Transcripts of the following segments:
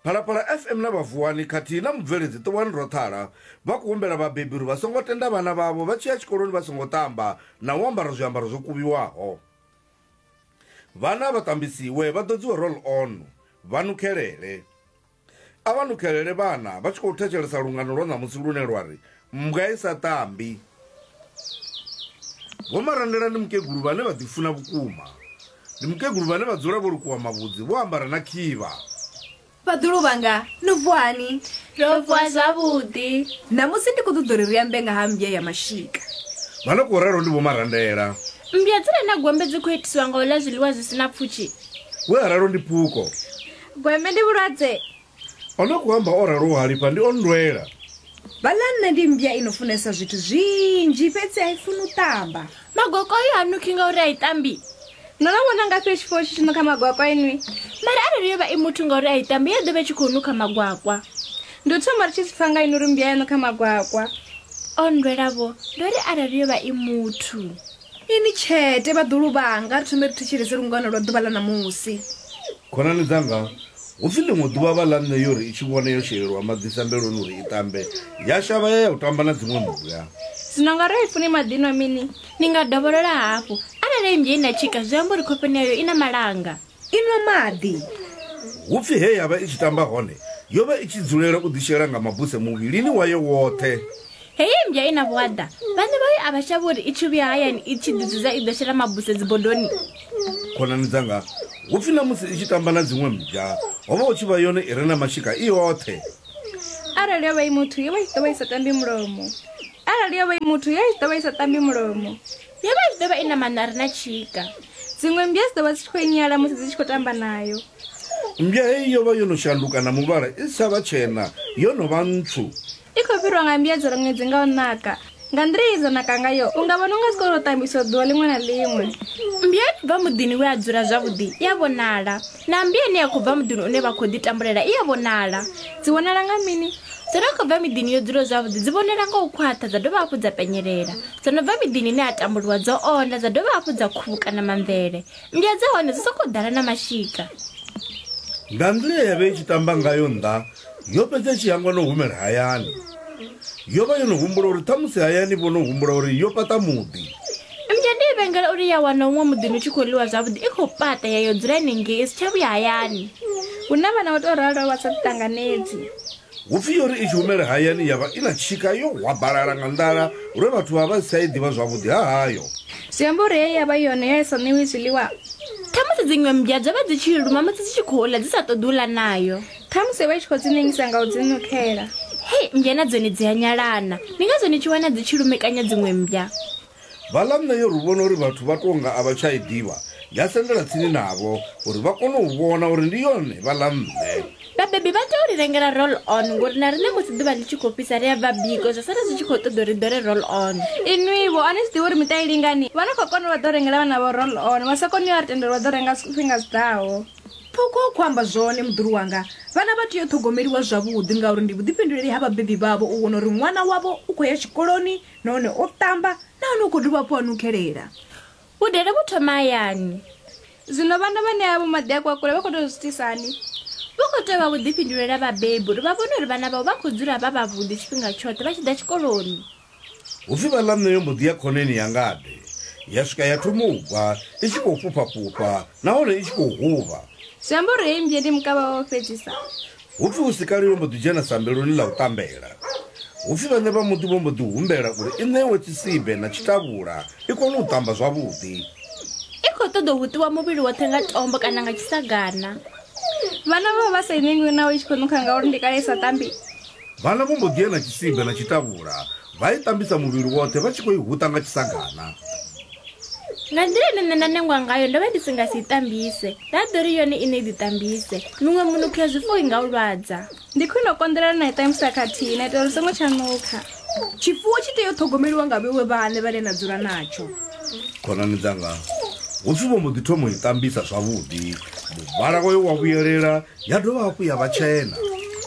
phalaphala fm na vhavuwani khathihi na mubveledzi ṱuwani roṱhala vha khou humbela vhabebi uri vha songo tenda vhana vhavho vha tshi ya tshikoloni vha songo ṱamba na u ambara zwiambaro zwo kuvhiwaho vhana vha ṱambisiwe vha ḓodziwe roll on vha nukhelele a vha nukhelele vhana vha tshi khou thetshelesa lungano lwa ṋamusi lune lwa ri Mmbwa i sa tambi. Vho Marandela ndi mukegulu vhane vha ḓifuna vhukuma. Ndi mukegulu vhane vha dzula vho lukuwa mavhudzi, vho ambara na khivha. Vhaḓulu vhanga, no vuwa hani? Ro vuwa zwavhuḓi. Ṋamusi ndi khou ṱoḓa uri ri ambe nga ha mmbya ya mashika. Vha no khou ralo ndi Vho Marandela. Mmbya dzi re na gwembe dzi khou itiswa nga u ḽa zwiḽiwa zwi si na pfushi. We a ralo ndi Phuko. Gwembe ndi vhulwadze O no khou amba o raloho halifha ndi o nndwela. Balanna ndi mmbya i no funesa zwithu zwinzhi fhedzi a i funi u ṱamba. Magwakwayu ha nukhi ngauri a i ṱambi. No no vhona ngafhi tshifuwo tshi tshi nukha magwakwa inwi? Mara arali yo vha i muthu ngauri a i ṱambi ya ḓo vha i tshi khou nukha magwakwa. Ndi u thoma ri tshi zwi pfa nga inwi uri mmbya ya nukha magwakwa. O nndwela-vho, ndo ri arali yo vha i muthu. Inwi tshete, vhaḓulu vhanga, ri thombe ri thetshelese lungano lwa ḓuvha ḽa ṋamusi. Khonani dzanga, hu pfi ḽiṅwe ḓuvha vha ḽa nṋe yo ri i tshi vhona yo shelelwa maḓi sambeloni uri i ṱambe, ya shavha ya ya u tamba na dziṅwe mmbwa. Zwino nga arali funi maḓi nwa mini? Ni nga dovholola hafhu. Arali ennzhe i na tshika, zwi amba uri khofheni yayo i na malanga. I nwa maḓi. Hu pfi he ya vha i tshi tamba hone, yo vha i tshi dzulela u ḓishela nga mabuse muvhilini wayo woṱhe. Heyi mmbya i na vhuaḓa. Vhaṋe vhayo a vha shavhi uri i tshi vhuya hayani i tshi ḓidzudza i ḓo shela mabuse dzibodoni. Khonani dzanga, hu pfi na musi i tshi tamba na dziṅwe mmbya, ho vha hu tshi vha yone i re na mashika i yoṱhe. Arali yo vha i muthu, yo vha i tshi ḓo vha i sa tambi mulomo. Arali yo vha i muthu, yo vha i tshi ḓo vha i sa tambi mulomo. Yo vha i tshi ḓo vha i na maṋo a re na tshika. Dziṅwe mmbya dzi ḓo vha dzi tshi khou i nyala musi dzi tshi khou tamba nayo. Mmbya heyi yo vha yo no shanduka na muvhala, i si tsha vha tshena, yo no vha ntswu. I khou fhirwa nga mbiadzelo ṅwedzi nga u naka. Nga nḓila ye dza naka ngayo, u nga vhona u nga dzi kona u tambiswa ḓuvha ḽiṅwe na ḽiṅwe. Mmbwa i no bva muḓini we a dzula zwavhuḓi i a vhonala, na mmbwa ine ya khou bva muḓini une vha khou ḓitambulela i a vhonala. Dzi vhonala nga mini? Dzo no khou bva miḓini yo dzulaho zwavhuḓi dzi vhonala nga u khwaṱha dza dovha hafhu dza penyelela. Dzo no bva miḓini ine ha tambuliwa dzo onda dza dovha hafhu dza khuvhukana mamvele. Ndi a dzi hone dzi sokou ḓala na mashika. Nga nḓila ye ya vha i tshi tamba ngayo nnḓa, yo fhedza i tshi hangwa na u humela hayani. Yo vha yo no humbula uri ṱhamusi hayani vho no humbula uri yo fhaṱa muḓi. Mmbwa ndi i vhengela uri ya wana huṅwe muḓini hu tshi khou ḽiwa zwavhuḓi i khou paṱa ya yo dzula henengei i si tsha vhuya hayani. Hu na vhana vho tou raloho vha sa ḓiṱanganedzi. Hu pfi yo ri i tshi humela hayani ya vha i na tshika yo hwabalala nga nḓala lwe vhathu vha vha vha si tsha i ḓivha zwavhuḓi ha hayo. Zwi amba uri he ya vha yone ya i sa ṋewi zwiḽiwa. Khamusi dziṅwe mmbwa dzo vha dzi tshi i luma musi dzi tshi khou ḽa dzi sa ṱoḓi u ḽa nayo. Khamusi yo vha i tshi khou dzi nengisa nga u dzi nukela. Hei, mmbwa na dzone dzi a nyalana. Ndi ngazwo ni tshi wana dzi tshi lumekanya dziṅwe mmbwa. Vhaḽa nṋe ri vhona uri vhathu vha tou nga a vha tsha i ḓivha, ya sendela tsini navho uri vha kone u vhona uri ndi yone vhaḽa nṋe. Vhabebi vha tea u ri rengela roll on ngori na riṋe musi ḓuvha ḽi tshi khou fhisa ri a bva biko zwa sala zwi tshi khou ṱoḓa uri ri ḓole roll on. Inwi-vho, a ni zwi ḓivhi uri miṱa i lingani? Vha no khou kona u vha ḓo rengela vhana vhavho roll on, vha sa koni u a ri tendela u vha ḓo renga zwifhinga zwi ḓaho. Phukhu u khou amba zwone muḓulu wanga. Vhana vha tea u ṱhogomeliwa zwavhuḓi ngauri ndi vhuḓifhinduleli ha vhabebi vhavho u vhona uri ṅwana wavho u khou ya tshikoloni nahone o ṱamba nahone u khou dovha hafhu a nukhelela. Vhudele vhu thoma hayani. Zwino vhana vhane avho maḓi a kwakule vha khou tea u zwi itisa hani? Vhu khou tea u vha vhuḓifhinduleli ha vhabebi uri vha vhone uri vhana vhavho vha khou dzula vha vhavhuḓi tshifhinga tshoṱhe vha tshi ḓa tshikoloni. Hu pfi vha ḽa nṋe yo mbo ḓi ya khoneni ya ngade ya swika ya thoma u gwa i tshi khou fhufha-fhufha nahone i tshi khou huvha. Zwi amba uri heyi mmbye ndi mukavha wawe wa u fhedzisa. Hu pfi hu si kale yo mbo ḓi dzhena sambeloni ḽa u tambela. Hu pfi vhaṋe vha muḓi vho mbo ḓi humbela uri i ṋewe tshisibe na tshitavhula i kone u tamba zwavhuḓi. I khou ṱoḓa u huṱiwa muvhili woṱhe nga tombo kana nga tshisagana. Vhana vho vha vha sa i ṋengwi naho i tshi khou nukha ngauri ndi kale i sa tambi. Vhana vho mbo ḓi ya na tshisibe na tshitavhula Vha i tambisa muvhili woṱhe vha tshi khou i huṱa nga tshisagana. Nga nḓila ine nṋe nda nengwa ngayo ndo vha ndi si nga si i tambise, nda ḓo ri yone iṋe i ḓitambise. Miṅwe minukho ya zwifuwo i nga u lwadza. Ndi khwine u konḓelela na i tambisa khathihi na itela uri u songo tsha nukha. Tshifuwo tshi tea u ṱhogomeliwa nga vheiwe vhaṋe vhane na dzula natsho. Khonani dzanga, hu pfi vho mbo ḓi thoma u i tambisa zwavhuḓi, muvhala wayo wa vhuyelela ya dovha hafhu ya vha tshena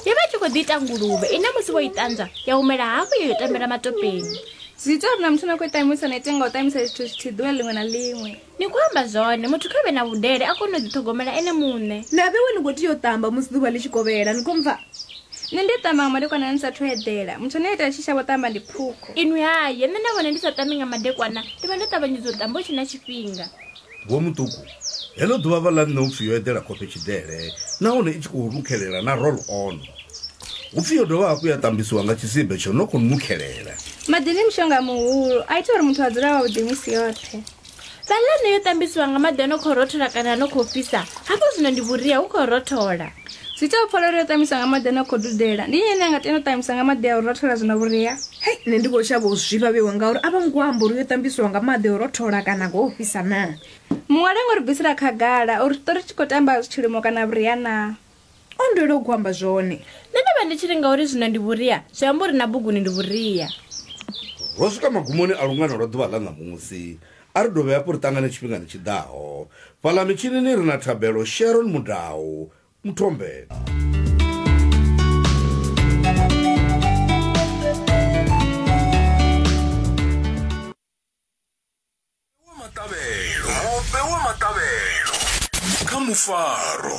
yo vha tshi khou ḓi ita nguluvhe ine musi vho i ṱanza ya humela hafhu yo yo tambela matopeni zwi ita uri na muthu na khou ṱamusa na ite nga u ṱamusa zwithu zwithihi ḓuvha ḽiṅwe na ḽiṅwe ni khou amba zwone muthu kha vhe na vhudele a kone u ḓiṱhogomela ene muṋe na vhewe ni khou tea u ṱamba musi ḓuvha ḽi tshi kovhela ni khou mpfa nṋe ndi a ṱamba nga madekwana ni sathu eḓela muthu ane a ita tshi shavho ṱamba ndi phukho inwi haye nṋe na vhone ndi sa ṱambi nga madekwana ndi vha ndo ṱavhanyedza u ṱamba hu tshe na tshifhinga Vho Muṱuku, Heḽo ḓuvha vha ḽa nṋe hu pfi yo eḓela khofhe tshiḓele nahone i tshi khou rukhelela na roll on. Hu pfi yo dovha hafhu ya ṱambisiwa nga tshisibe tsho no khou nukhelela. Maḓi ndi mushonga muhulu, a ita uri muthu a dzule a wavhuḓi misi yoṱhe. Vha ḽa nṋe yo ṱambisiwa nga maḓi a no khou rothola kana a no khou fhisa, hafho zwino ndi vhuria hu khou rothola. Zwi ita u pfa lwo ri yo ṱambiswa nga maḓi ano khou dudela. Ndi nnyi ane a nga tenda u ṱambiswa nga maḓi a u rothola zwi na vhuria? Hei, nṋe ndi vho shavha u zwifha vhewa ngauri a vho ngo amba uri yo ṱambiswa nga maḓi a u rothola kana nga o fhisa naa. Muṅwali o ngo ri bvisela khagala uri tshiṱori tshi khou tamba tshilimo kana vhuria naa. O nndwela u khou amba zwone. Nṋe ndo vha ndi tshi ri ngauri zwino ndi vhuria, zwi amba uri na buguni ndi vhuria. Ro swika magumoni a lungano lwa ḓuvha ḽa ṋamusi. A ri dovhe hafhu ri ṱangane tshifhingani tshi ḓaho. Fhaḽa mitshinini ri na Thabelo Sharon Mudau, Muthombela. Mupe wa Maṱavhelo, Mupe wa Maṱavhelo kha Mufaro.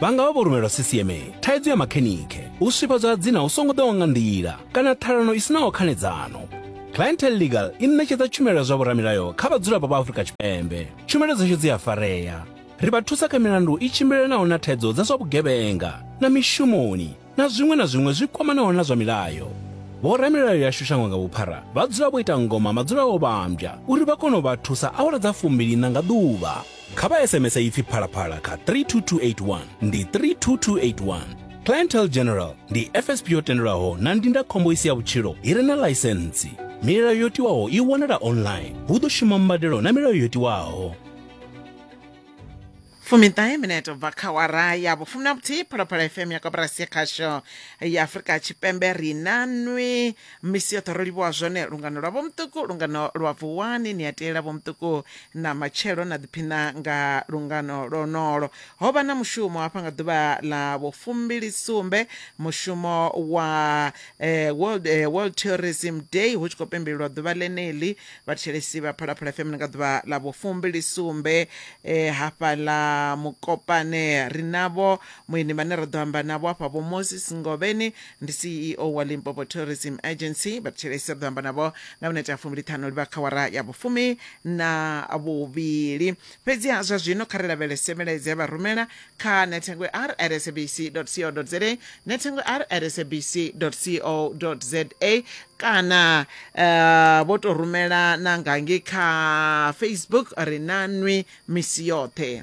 vha nga vha vho rumelwa ccma thaidzo ya makhenikhe u swifhadzwa ha dzina hu songo ḓaho nga nḓila kana ṱhalano i sinaho khanedzano clientel legal i ṋetshedza tshumelo ya zwa vhoramilayo kha vhadzulapo vha afurika tshipembe tshumelo dzashu dzi a farea ri vha thusa kha milandu i tshimbilelanaho na thaidzo dza zwa vhugevhenga na mishumoni na zwiṅwe na zwiṅwe zwi kwamanaho na zwa milayo. Vhoramilayo yashu shango nga vhuphara vha dzula vho ita ngoma madzula o vhambya uri vha kone u vha thusa awara dza fumbiliṋa nga ḓuvha. Kha vha SMS ipfi phalaphala kha 32281 ndi 32281. Clientele General ndi FSP yo tendelwaho na ndindakhombo i si ya vhutshilo i re na ḽaisentsi. Milayo yo tiwaho i wanala online. Hu ḓo shuma mbadelo na milayo yo tiwaho. fumiṱahe minete u bva kha wara ya vhufumi na vhuthihi phalaphala fm ya koporasi ya khasho ya afurika tshipembe ri na nwi misi yoṱhe ro livhuwa zwone lungano lwa vhomuṱuku lungano lwa vuwani ni a teela vhomuṱuku na matshelo na ḓiphina nga lungano lwonolo ho vha na mushumo hafha nga ḓuvha ḽa vhufumbili sumbe mushumo wa eh, world, eh, world tourism day hu tshi khou pembelelwa ḓuvha ḽeneḽi Vhathetshelesi vha Phalaphala FM nga ḓuvha ḽa vhufumbili sumbe eh, hafha ḽa Mukopane ri navho muini vhane ra ḓo amba navho hafha vho Moses Ngovheni ndi CEO wa Limpopo Tourism Agency vhathetshelesi ri ḓo amba navho nga minete ya fumbili ṱhanu livha kha wara ya vhufumi na vhuvhili fhedziha zwa zwino kha ri lavhelese milaedza ya vha rumela kha nethengwe r at sabc co za nethengwe r at sabc co za kana uh, vho to rumela na ngangi kha facebook ri na nwi misi yoṱhe